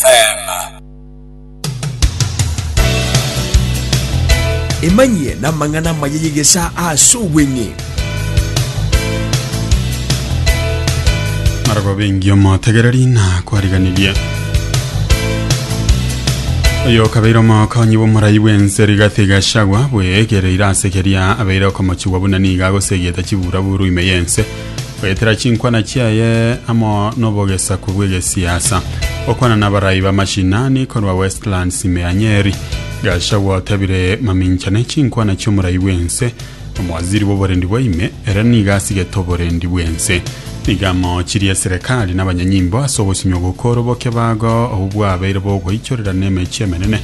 Teema. Emanyie namang'ana amaya y'egesaa ase obweng'e. Araba bengi omotegereri na kwariganirie oyo okabeire omokonyi bw'omorai bw'ense rigathi gashagwa bwegereire ase keria abeire okomochigwa buna nigo agosegete chiburaburu ime y'ense Goetera chinkwana chiaye amo nobogesaku bw'egesiasa. Gokwana nabarai bamashinani korwa Westlands ime ya Nyeri. Gachagua otabire mamincha ne chinkwana chiomorai bwense. Omowaziri bw'oborendi bwa ime ere niga asigete oborendi bwense. Niga amochirie serekari nabanyanyimbo ase ogosimia ogokoro boke bago obwo bwabeire bogoichorera nemechi emenene.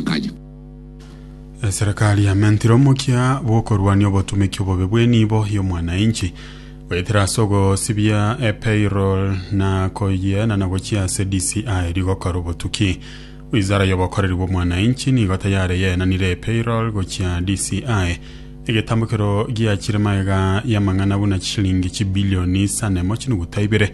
nkayo. Eserekari yamentire omokia bw'okorwania obotumeki obobe bw'enibo y'omwanainchi, goetera ase ogosibia epayroll na koyiena na gochia ase DCI rigokora obotuki. Wizara y'obokoreri bw'omwanainchi nigo tayare yaenanire epayroll gochia DCI, egetambo ekero giachire magega y'amang'ana buna chishilingi chibilioni isano emo chinuguta ibere,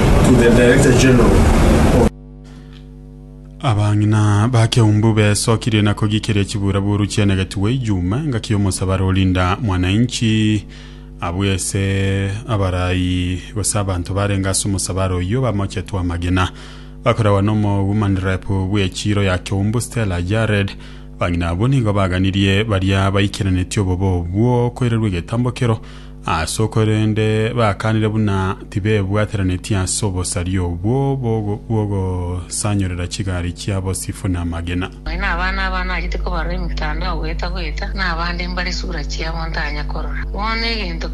to the Director General of Abang'ina ba Keumbu besokirie na kogikiria chiburaburu chi'enegetwe Ijumaa engaki y'omosaba Rolinda Mwananchi abwo ase abarai gose abanto barenge ase omosabare oyio bamochetwe amagena. Bakoragwa n'omogumanrepu bw'echiro ya Keumbu Stella Jared, abang'ina abwo nigo baganirie baria baikeranetie obobe obwo koirerwa egetambo kero Ase korende bakanire buna tibebwateranetie ase obosaria obwo bw'ogosanyorera chigari chiabo sifu namagena. Nonya nabana aba nachete kobarora emitandao goeta goeta, na abande mbare esura chiabo ntanya korora. Bono egento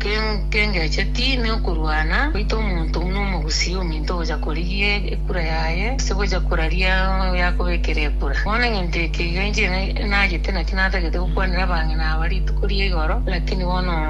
kengecheti nokorwana goita omonto buna omogusi ominto gocha korigia ekura yaye ase gocha koraria oyakobekera ekura. Bono egento eke iga inche nachete naki natagete gokwanera abang'ina aba rituko ria igoro, lakini bono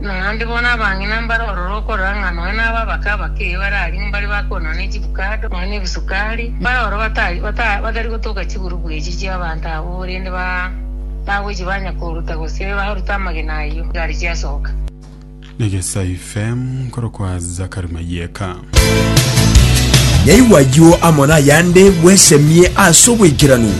Naende bono abang'ina mbare ororo okorora ng'a nonya naba abake abake bare aria mbare bakoonwa ne chivukado, nonya nebisukari, mbare ororo batari gotoka chigurube echi chi'abanto abwo, korende bagochia banya koruta gose baruta amagena ayio igare chiasoka. Negesai FM nkorokwa Zakari Mayeka. Yaigwa ayio amo nayande bwesemie ase obwaikeranu.